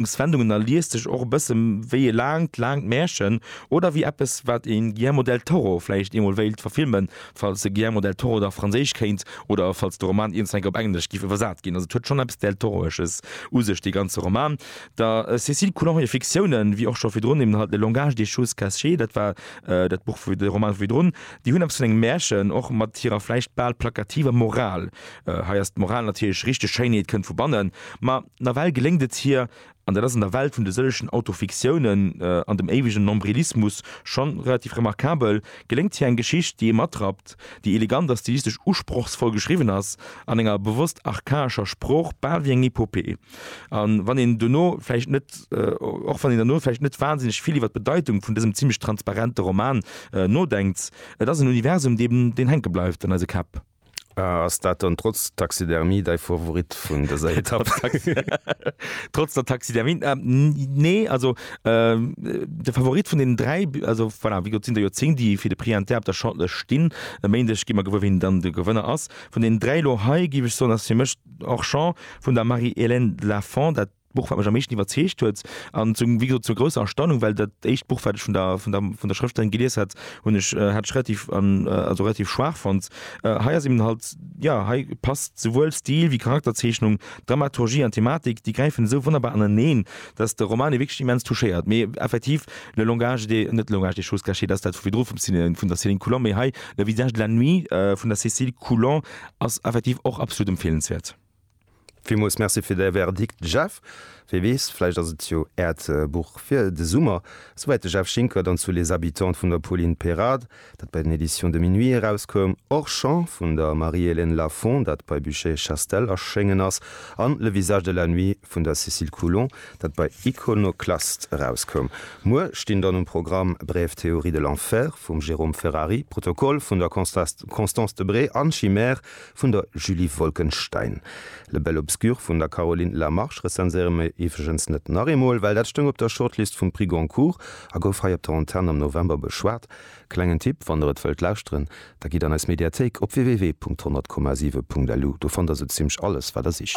D'Begegnungs wendungen a liest sech och e bësse wéi e laangt, laangt Märchen oder wéi eppes, wat ee Guillermo del Toro vläicht eemol wéilt verfilmen, falls de Guillermo del Toro da Franséisch kéint oder falls de Roman iergendwann op Englesch giff iwwersat ginn. Also et huet schonn eppes Del-Toroesches u sech, dee ganze Roman. Der Cécile Coulon hir Fiktiounen, wéi och scho virdrun eben halt Le langage des choses cachées, dat war dat Buch vu, de Roman vu virdrun, déi hunn eppes vun engem Märchen, och mat hirer vläicht bal plakativer Moral. Hei ass d'Moral natierlech richteg, Schéinheet kënnt vu bannen. Ma. Nawell geléngt et hir, an dat ass an der Welt vun de sëllegen Autofiktiounen an dem éiwegen Nombrilismus scho relativ remarkabel, geléngt hir eng Geschicht, déi ee matrappt, déi elegant a stilistesch usprochsvoll geschriwwen ass, an enger bewosst archaescher Sprooch, bal wéi eng Epopee. A wann een duerno vläicht net, och wann een duerno vläicht net wansinneg vill iwwer d'Bedeitung vun dësem zimlech transparente Roman nodenkt, et ass en Universum, deen hänke bleift an eise Käpp. Ass dat dann trotz Taxidermie däi Favorit vun dëser Etapp? Trotz der Taxidermie? Nee, also de Favorit vun den dräi, also voilà, wéi gesot sinn der jo zéng, déi fir de Prix Inter op der Shortlëscht stinn. E Méindeg gi mer gewuer, wien dann de Gewënner ass. Vun den dräi elo hei, géif ech soen, ass fir mech d'Orchamps vun der Marie-Hélène Lafont dat. D'Buch, wat mech am meeschten iwwerzeegt huet, an zu, wéi gesot, zur grousser Erstaunung, well dat éischt Buch, wat ech vun der, vun der, vun der Schrëftellerin gelies hat, hunn ech, hat ech relativ, also relativ schwaach fonnt. Hei ass eben halt, jo, hei passt souwuel Stil wéi Charakterzeechnung, Dramaturgie an Thematik, déi gräifen esou wonnerbar aneneen, dass de Roman ee wierklech immens touchéiert. Mee effektiv, le langage des, net le langage des choses cachées, dat ass dat vu virdru vum Cine, vun der Céline Coulon, mee hei le visage de la nuit vun der Cécile Coulon ass effektiv och absolut empfeelenswäert. Villmools Merci fir däi Verdikt Jeff. Wee weess, vläicht ass et jo Äert Buch fir de Summer. Souwäit de Jeff Schinker, dann zu Les Habitants vun der Pauline Perard, dat bei den Editions de Minuit erauskoum, Orchan vun der Marie-Hélène Lafon, dat bei Buchet Chastel erschéngen ass, an Le visage de la nuit vun der Cécile Coulon, dat bei Iconoclaste erauskoum. Muer stinn dann um Programm Brève théorie de l'enfer vum Jérôme Ferrari, Protokoll vun der Constance Debré an Chimère vun der Julie Wolkenstein. Le Bel Obscur vun der Caroline Lamarche rezenséiere mir iwwregens net nach eemol, well dat stoung op der Shortlist vum Prix Goncourt a gouf hei op der Antenn am November beschwat. Klengen Tipp, Wann der et wëllt lauschteren, da gitt an eis Mediathéik op www.100,7.lu, do fannt der sou zimmlech alles, wat der sicht.